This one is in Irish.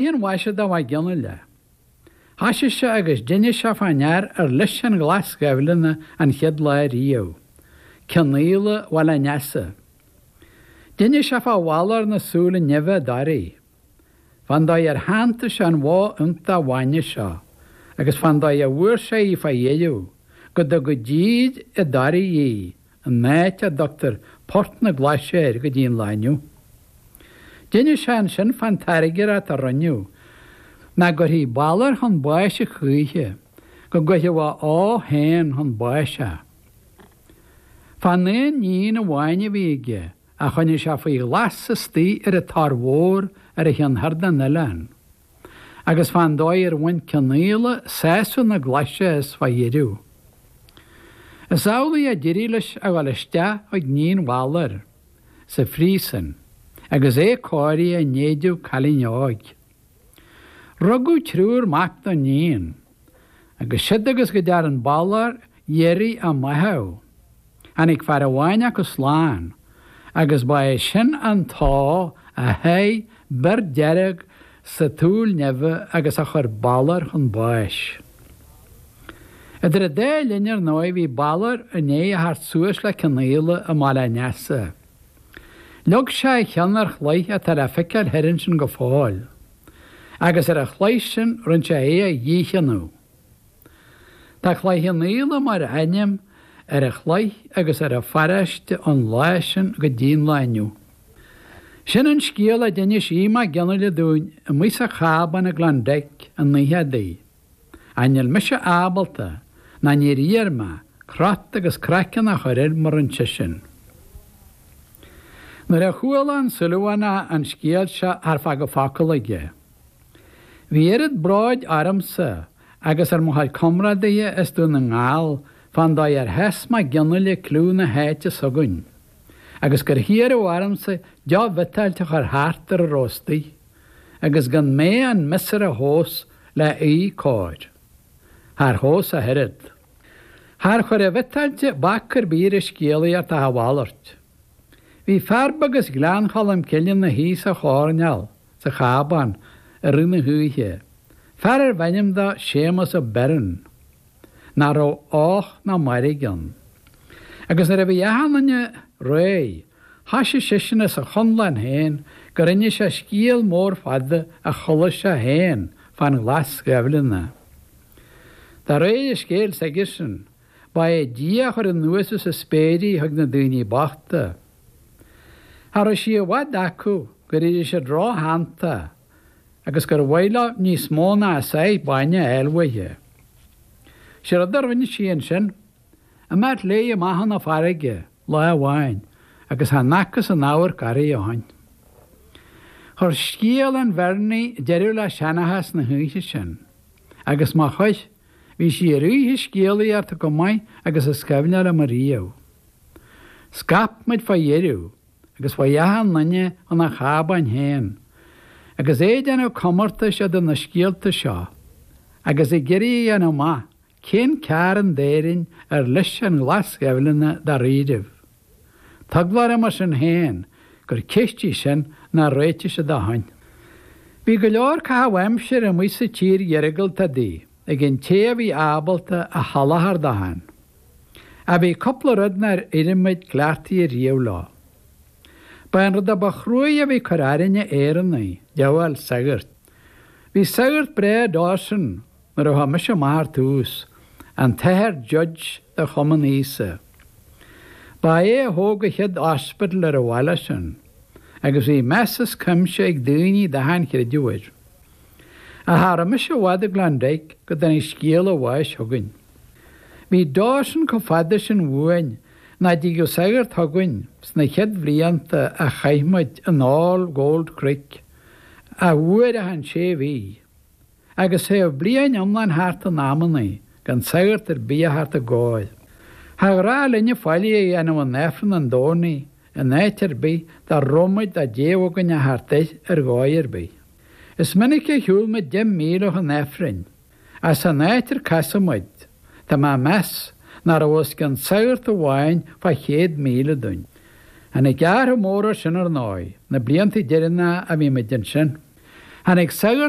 an mhaise do Mhac Fhionnaile. Thoisigh sé agus d'innis sé fán fhear ar leis an Ghlas Ghaibhleanna an chéad lá ariamh. Cionnaola Bhaile an Easa. D'innis sé fá Bhalor na Súile Nimhe i dToraigh. Fán dóigh ar shantaigh sé an bhó iontach bhainne seo agus fán dóigh a bhfuair sé í fá dheireadh, go dtug i dtír i dToraigh í, an áit a dtugtar Port na Glaise air go dtí an lá inniu. D'innis sé annsin fá'n tairngreacht a rinneadh nach gcuirfí Balor chun báis a choíche, go gcuirfeadh a ua féin chun báis é. Fá'n aon níon amháin a bhí aige a choinnigh sé faoi ghlas istoigh ar an Tor Mhór ar a chionn thoir de'n oileán. agus fán dóigh ar bhain Cionnaola sásamh na glaise as fá dheireadh. Is amhlaidh a d'eirigh leis a dhul isteach chuig níon Bhaloir sa phríosun agus é cóirithe in éideadh cailín óig. Rugadh triúr mac don níon. agus siúd agus go dtearn Balor iarraidh a mbáitheadh. Tháinig fear amháin acu slán agus ba é sin an t-ua a sháith bior dearg sa tsúil nimhe agus a chuir Balor chun báis. Idir an dá linn ar ndóigh bhí Balor i ndéidh a theacht suas le Cionnaola i mBaile an Easa. Leag sé a cheann ar chloich atá le feiceáil thoir ansin go fóill. agus ar a chloich sin rinn sé é a dhícheannú. Tá Cloich Cheann Fhaola mar ainm ar a chloich agus ar a pharáiste ón lá sin go dtí'n lá inniu. Sin an scéal a d'inis Aoidh Mac Fhionnaile dúinn amuigh sa chábán i gKlondike an oíche adaí. Ach níl mise ábalta, ná níor iarr mé, crot agus craiceann a chur air mar a rinn seisean. Nuair a chuala an Súilleabhánach an scéal seo char fágadh focal aige. Bhí oiread bróid ormsa agus ar mo chuid comrádaithe as Dún na nGall fán dóigh ar sheas Mac Fhionnaile cliú na háite s'againn agus gur hiarradh ormsa deoch bhiotáilte a chur thart ar a rabh istigh. agus gan mé an miosúr a thomhas leath cóir. Char thomhais ach oiread. Char chuir an bhiotáilte bac ar bith ar an scéalaíocht ach a mhalairt. Bhí fear beag as Gleann Cholm Cille 'na shuí sa choirneál sa chábán i rith na hoíche, fear ar bh'ainm do Séamus Ó Beirn. nach raibh och ná mairg ann. Agus nuair a bhí Mac Fhionnaile réidh, thoisigh seisean as a chonlán féin gur innis sé scéal mór fada a chualaidh sé féin fá'n Ghlas Ghaibhleanna. De réir a scéil s'aigesean, badh é Dia a chuir anuas as a spéir í chuig na daoine bochta. Cha rabh sí i bhfad acu gur eirigh siad ró-shantach agus gur mhaith leo níos mó ná a sáith bainne a fháil uaithe. Sé rud a rinne sí annsin, imeacht léi amach 'un na fairrge, lá amháin, agus chan fhacthas aon amharc uirthi ó shoin. Chuir scéal an Bheirnigh deireadh le seanchas na h-oíche sin, agus má chuir, bhí sí ar oíche scéalaíochta chomh maith agus is cuimhne liom ariamh. Scaip muid fá dheireadh. agus chuaigh achan duine 'un a chábáin féin, agus é ag déanamh comórtais eadar na scéalta seo, agus ag iarraidh a dhéanamh amach cé'n cearn d'Éirinn ar leis an Ghlas Ghaibhleanna dáiríribh. Tá eagla orm mar sin féin gur ceist í sin nár réitigh sé dó féin. Bhí go leor caitheamh aimsire amuigh sa tír iargúlta údaí ag an té a bhí ábalta a sholáthar dó féin. Ach bhí cupla rud nár éirigh muid cleachtaithe riamh leo. Ba é an rud a ba chruaidhe a bhí ag cur orainne Éireannaigh, díobháil sagart. Bhí sagart breá i nDawson, nuair a chuaigh mise amach ar tús, an t-Athair Judge do Chumann Íosa. Ba é a thóg an chéad hospital ar an bhaile sin, agus bhí meas as cuimse ag daoine d'achan chreideamh air. Ach cha rabh mise i bhfad i gClondyke go dtáinig scéala a bháis chugainn. Bhí Dawson chomh fada sin uainn nach dtigeadh sagart chugainn sna chéad bhlianta a chaith muid in All Gold Creek ach uair achan sé mhí, agus théadh bliain iomlán thart in amannaí gan sagart ar bith a theacht ár gcóir. Char ghnách linne faillí a dhéanamh in Aifreann an Domhnaigh in áit ar bith dá rabh muid dá dtéadh againn a theacht air ar dhóigh ar bith. Is minic a shiúl muid deich míle chun Aifrinn. ach san áit ar casadh muid, tá mé ag meas nach raibh os cionn sagart amháin fá chéad míle dúinn. Tháinig athrach mór air sin ar ndóigh, na blianta deireannacha a bhí muid ansin. Tháinig sagart